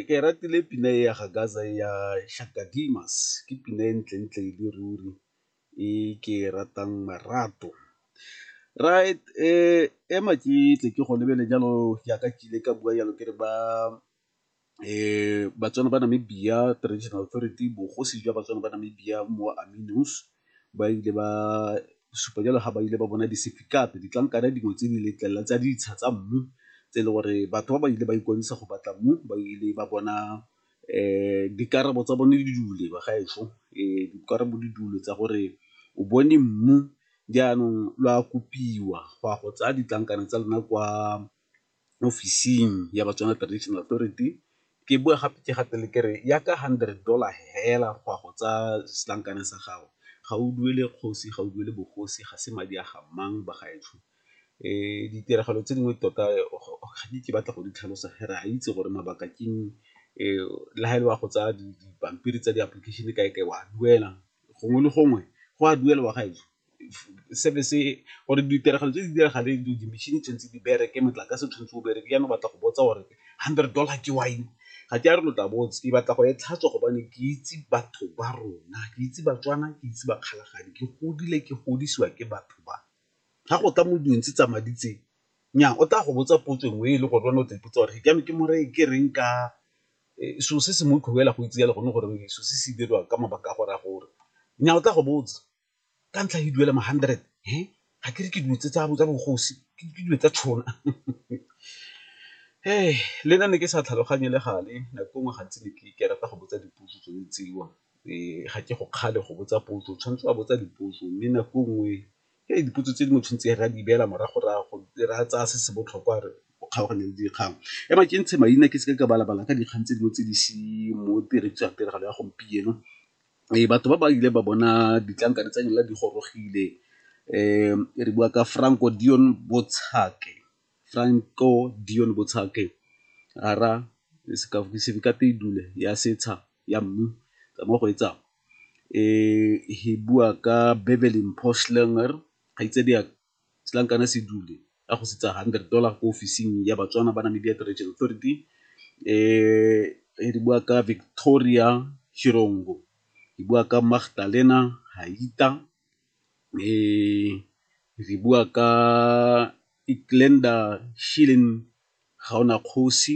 Ke ratile pina e ya ga Gasa e ya Shaka Demus ke pina e ntle ntle e le ruri e ke e ratang marato. Right ema ke tle ke go lebelele jalo jaaka ke ile ka bua jalo ke re ba Batswana ba Namibia traditional authority bogosi jwa Batswana ba Namibia mo . ba ile ba supa jalo ga ba ile ba bona di-certificate, ditlankana dingwe tse di letlelela tsa ditsha tsa mmu tse e le gore batho ba ba ile ba ikwadisa go batla mmu ba ile ba bona dikarabo tsa bone di dule ba ga ešo dikarabo di dule tsa gore o bone mmu jaanong lo a kopiwa go ya go tsaya ditlankana tsa lona kwa mo office-ing ya Batswana Tradition Authority, ke boe gape ke gatele ke re ya ka hundred dollar fela go ya go tsaya setlankana sa gago, ga o duele kgosi, ga o duele bogosi, ga se madi a ga mang bagaetsho. Ditiragalo tse dingwe tota ga ke ke batla go di tlhalosa ge re a itse gore mabaka ke eng, le ha e le wa go tsaya dipampiri tsa di-application kae-kae wa duela, gongwe le gongwe go a duelwa bagaetsho. gore ditiragalo tse di diragale di-machine tshwanetse di bereke, motlakase o tshwanetse o bereke, jaanong o batla go botsa gore hundred dollar ke wa eng? Ga ke a re lo tla botsa, ke batla go e tlhatswa gobane ke itse batho ba rona, ke itse Batswana, ke itse Bakgalajadi, ke godile ke godisiwa ke batho ba. Ga go tla mo dilong tse tsa madi tse, nnyaa o tla go botsa potso nngwe e le gore wena o tla ipotsa gore jaanong ke mo reye ke reng ka selo se se motlhofo fela go itse jalo gone gore selo se se diriwa ka mabaka a gore a gore, nnyaa o tla go botsa. ka ntlha ke duela ma hundred he ga ke re ke dilo tse tsa bogosi ke dilo tsa tšhona he le nna ne ke sa tlhaloganye le gale nako nngwe gantsi ne ke rata go botsa dipotso tsone tseo um ga ke go kgale go botsa potso o tshwanetse wa botsa dipotso mme nako nngwe ke dipotso tse di mo tshwanetse re a di beela morago-rago re a tsaya se se botlhokwa re o kgaogane le dikgang e ma ke ntshe maina ke seke ka balabala ka dikgang tse dingwe tse di se mo tiragalo ya gompieno Ee, batho ba ba ile ba bona ditlankana tsa lona di gorogile re bua ka Franco Dion Botshake, Franco Dion Botshake ya setsha ya mmu tsamaya go e tsaya e bua ka Beverly Mpho Schlinger kgaitsadiake setlankana se dule a go sitsa hundred dollar ko ofising ya Batswana ba Namibia Heritage Authority re bua ka Victoria Shirongo, re bua ka Magdalena Haita, re bua ka Iklenda Shilen Gaonakgosi,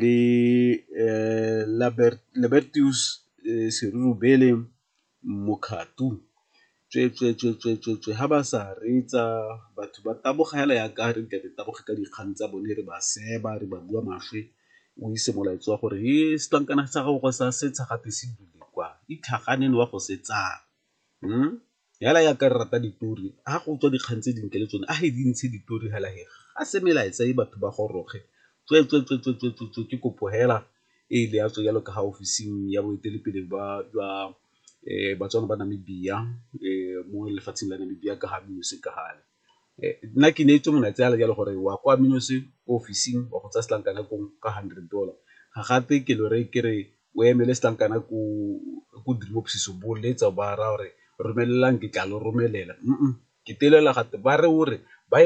le Libertius Serurubele Mokhato tsweetswee, tsweetswee, tsweetswee, ha ba sa reetsa batho ba taboga hela yaka ha re nke re taboge ka dikgang tsa bone re ba seba re ba bua maswe o ise molaetsa wa gore he setlankana sa gago sa setsha gate se dule kwa itlhaganeng wa go se tsaya . Hela ya ka re rata ditori ha go tswa dikgang tse dintle le tsone a re di ntshe ditori hela he ga se melaetsa e batho ba goroge tswetswetswetswetswetswe ke kopo hela e le ya tswe jalo ka ga ofising ya boeteledipele ba jwa Batswana ba Namibia mo lefatsheng la Namibia ka ga Mmusi ka gale. Nna ke neetswe molaetsa fela jalo gore wa kwa ko office-ing wa go tsaya setlankana koo ka hundred dollar, ga gatwe ke lo reye ke re o emele setlankana ko direbophisiso bo letsa ba raya gore romelelang ke tla lo romelela ke telela gatwe ba re o re ba e.